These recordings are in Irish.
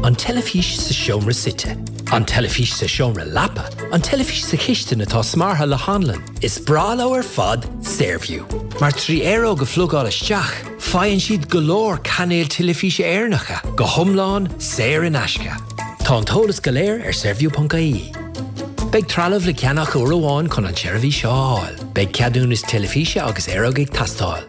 An teilifís sa seomra suite. An teilifís sa seomra leapa. An teilifís sa chistin atá smeartha le hanlann. Is breá leo ar fad Saorview, mar trí aeróg a phlugáil isteach, faigheann siad go leor cainéil teilifíse Éireannacha, go hiomlán saor in aisce. Tá an t-eolas go léir ar Saorview.ie. Beidh trealamh le ceannach uair amháin chun an tseirbhís seo a fháil. Beidh ceadúnas teilifíse agus aeróg ag teastáil.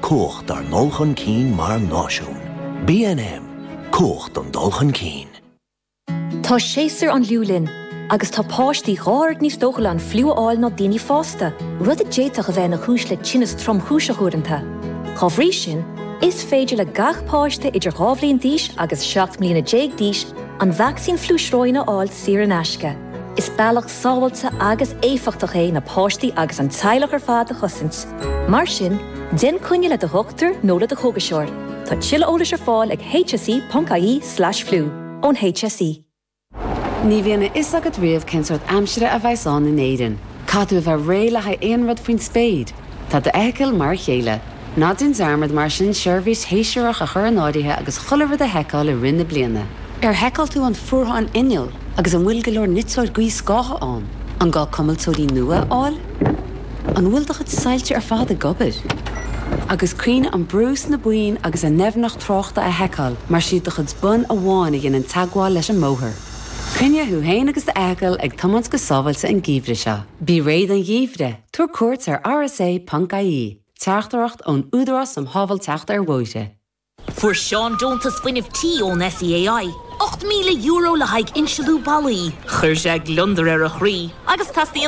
Cumhacht ár ndul chun cinn mar náisiún. BNM, Cumhacht don dul chun cinn. Tá séasúr an fhliú linn, agus tá páistí dhá oiread níos dócha le an fliú a fháil ná daoine fásta, rud a d'fhéadfadh a bheith ina chúis le tinneas tromchúiseach uaireanta. Dá bhrí sin, is féidir le gach páiste idir dhá bhliain d'aois agus seacht mbliana déag d'aois an vacsaín fliú sróin a fháil saor in aisce. Is bealach sábháilte agus éifeachtach é na páistí agus an teaghlach ar fad a chosaint. Mar sin, déan coinne le do dhochtúir nó le do chógaiseoir. Tá tuilleadh eolais ar fáil ag hse.ie slash flu. Ón HSE. Ní bhíonn a fhios agat riamh cén sórt aimsire a bheas ann in Éirinn. Caithfidh tú a bheith réidh le haghaidh aon rud faoin spéir. Tá d'fheithicil mar a chéile. Ná déan dearmad mar sin seirbhís shéasúrach a chur in áirithe agus chuile rud a sheiceáil i rith na bliana. Ar sheiceáil tú an fuartháin innill agus an bhfuil go leor niteoir gaothscátha ann? An gá cuimilteoirí nua a fháil? An bhfuil do chuid soilse ar fad ag obair? Agus cuimhnigh an brú sna boinn agus an doimhneacht tráchta a sheiceáil mar is iad do chuid bonn amháin a dhéanann teagmháil leis an mbóthar. Coinnigh thú féin agus d'fheithicil ag tiomáint go sábháilte an geimhreadh seo. Bí réidh don gheimhreadh, tabhair cuairt ar rsa.ie, Teachtaireacht ón Údarás um Shábháilteacht ar Bhóithre. Fuair Seán deontas fuinnimh tí ón SEAI, €8,000 le haghaidh insealú ballaí. Chuir sé gliondar ar a chroí agus teas ina.